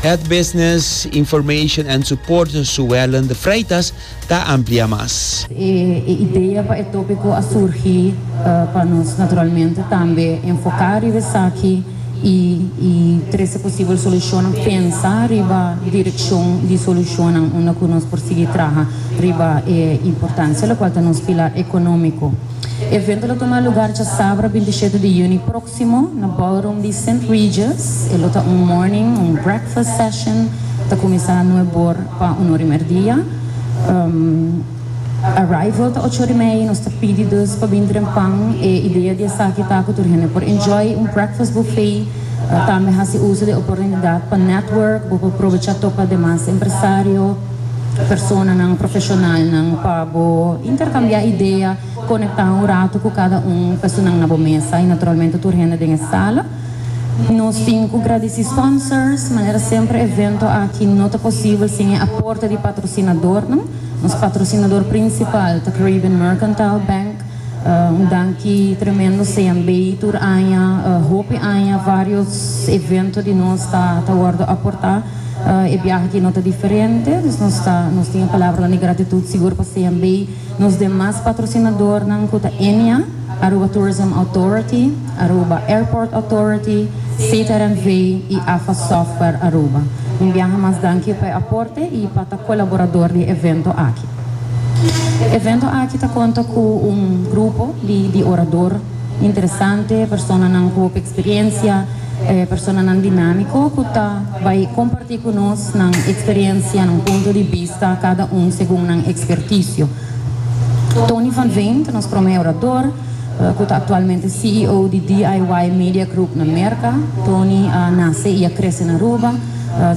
Het Business, Information and Support Suellen de Freitas ta amplia mas. E idea pa e topico a surgi pa nos naturalmente tambe enfoca riba esaki y y trece posibel solucionnan, pensa riba direccion di solucionnan unda cu nos por sigui traha riba e importancia locual ta nos pilar economico. Evento ta tuma lugar djasabra binti shete di juni proximo. Próksimo, na ballroom di St. Regis, e lo ta un morning, un breakfast session, ta kuminsá nuèf bor pa unu ori mèrdia. Arrival ta ocho ori mei, nos ta pidi dus pa bin dren pan. E idea di esaki ta ku tur hende por enjoy un breakfast buffet, tambe hasi uso di e oportunidat pa network, bo por probechá topa demas empresario, personanan, profeshonalnan pa bo interkambiá idea. Konektá un ratu ku kada un personan na bo mesa i naturalmente tur hende den e sala. Nos tin ku gradisí sponsors, manera semper evento aki no ta posibel sin e aporte di patrosinadornan. Nos patrosinador prinsipal ta Caribbean Mercantile Bank. Un danki tremendo sean bei tur aña, hopi aña vários evento di nos ta ta wòrdu aportá, e biaha aki no ta diferente. Dus nos ta nos tin e palabranan di gratitut sigur pa sean bei. Nos demas patrosinadornan cu ta EMEA, Aruba Tourism Authority, Aruba Airport Authority, CTRNV y AFA Software Aruba. Un biaha mas danki pa e aporte y pa ta colaborador di e evento aki. E evento aki ta conta cu un grupo di di orador. interesante, personanan cu hopi experiencia, personanan dinamico cu ta bay comparti cu nos nan experiencia, nan punto di bista, cada un segun nan experticio. Tony van Veen ta nos prome orador, cu ta actualmente CEO di DIY Media Group na Merca. Tony a nace y a crece na Aruba.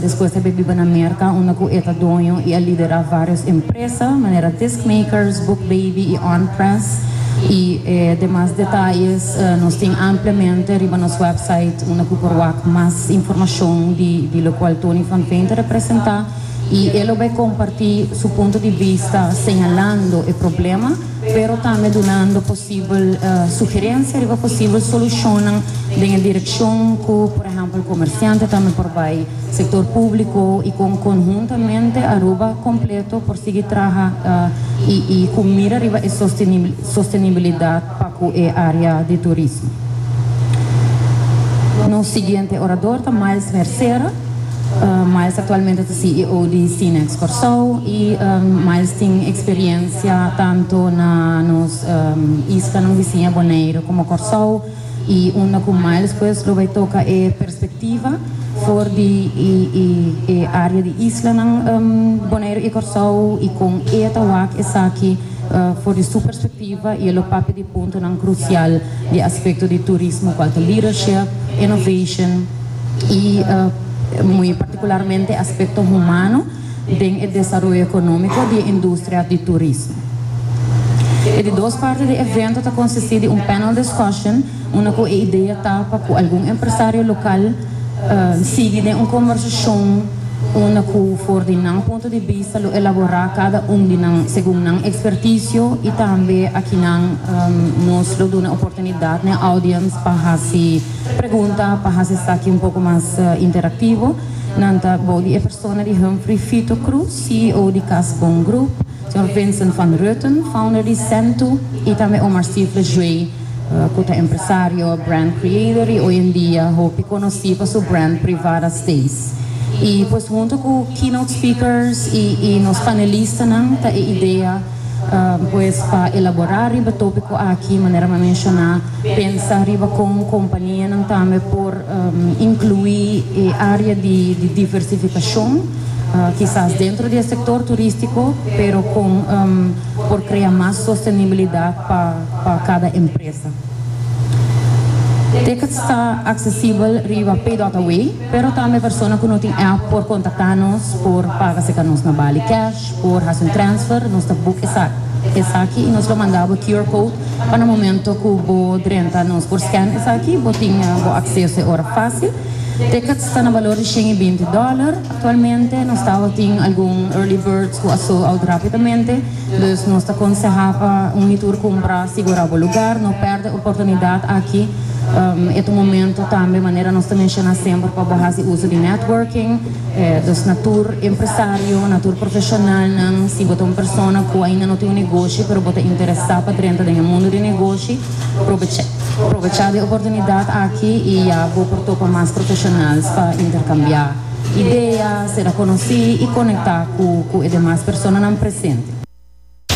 Despues ta be biba na Merka unda ku e ta doño i a liderá vários empresa manera Discmakers, Book Baby i On Press. I e demas detayes nos tin ampliamente riba nos wèpsait unda ku por wak mas informashon di lokual Tony Van Veen ta representá i e lo bai kompartí su punto di bista señalando e problema pero tambe dunando posibel sugerencia riba posibel solucionnan den e direccion cu por ehempel comerciante tambe por bay, sector publico y con conhuntamente Aruba completo por sigui traha y cu mira riba e sostenibilidad pa cu e area di turismo. Nos siguiente orador ta Miles Mercera. Miles aktualmente ta CEO di Cinex Kòrsou i Miles tin eksperiensia tantu na nos islanan bisiña Boneiru komo Kòrsou i unda ku Miles pues lo bai toka e perspektiva for di e área di islanan Boneiru i Kòrsou i kon e ta wak esaki for di su perspektiva. Activa y e lo papia di puntonan crucial di aspecto di turismo cual ta leadership, innovation y muy particularmente aspecto humano den e desaroyo economico di e industria di turismo. E di dos parti di e evento ta consisti di un panel discussion Una ku e idea ta pa ku algun empresario lokal sigui den un kombersashon unda ku for di nan punto di bista lo elaborá kada un di nan segun nan ekspertisio i tambe akinan nos lo duna oportunidat n'e audiens pa hasi pregunta, pa hasi esaki un poko mas interaktivo. Nan ta bou di e persona di Humphrey Fito Cruz, CEO di Kas Bon Group. Dòr Vincent van Rutten, founder di Sentu, i tambe Omar Stifler Jue, ku ta empresario, brand creator i oy en dia hopi konosí pa su brand Privada Stays. I pues huntu ku keynote speakers i nos panelistanan ta e idea pues pa elaborá riba tópiko aki, manera mi a menshoná, pensa riba kon kompanianan tambe por inkluí e área di diversifikashon. kisas dentro di e sektor turístiko, pero kon por krea mas sostenibilidat pa kada empresa. Ticket sta aksesibel riba PayDotAway, pero tambe persona ku no tin app por kontaktá nos por paga se ka nos na Bali cash, por hasi un transfer, nos ta boek esaki i nos lo manda bo QR code pa na momento ku bo drenta nos por scan esaki bo tin bo akseso e ora fásil. Tickets ta na balor di shen i binti dòler aktualmente. Nos ta awa tin algun early birds ku a sold out rápidamente, dus nos ta konsehá pa un di tur kumpra sigurá bo lugar. No pèrdè oportunidat aki. E ta un momentu tambe, manera nos ta menshoná semper, pa bo hasi uso di networking, dus na tur empresario, na tur profeshonalnan. Si bo ta un persona ku ainda no tin un negoshi pero bo ta interesá pa drenta den e mundu di negoshi, Probechá di oportunidat aki i ya bo por topa mas profeshonals pa interkambiá idea, sera konosí i konektá ku e demas personanan presente.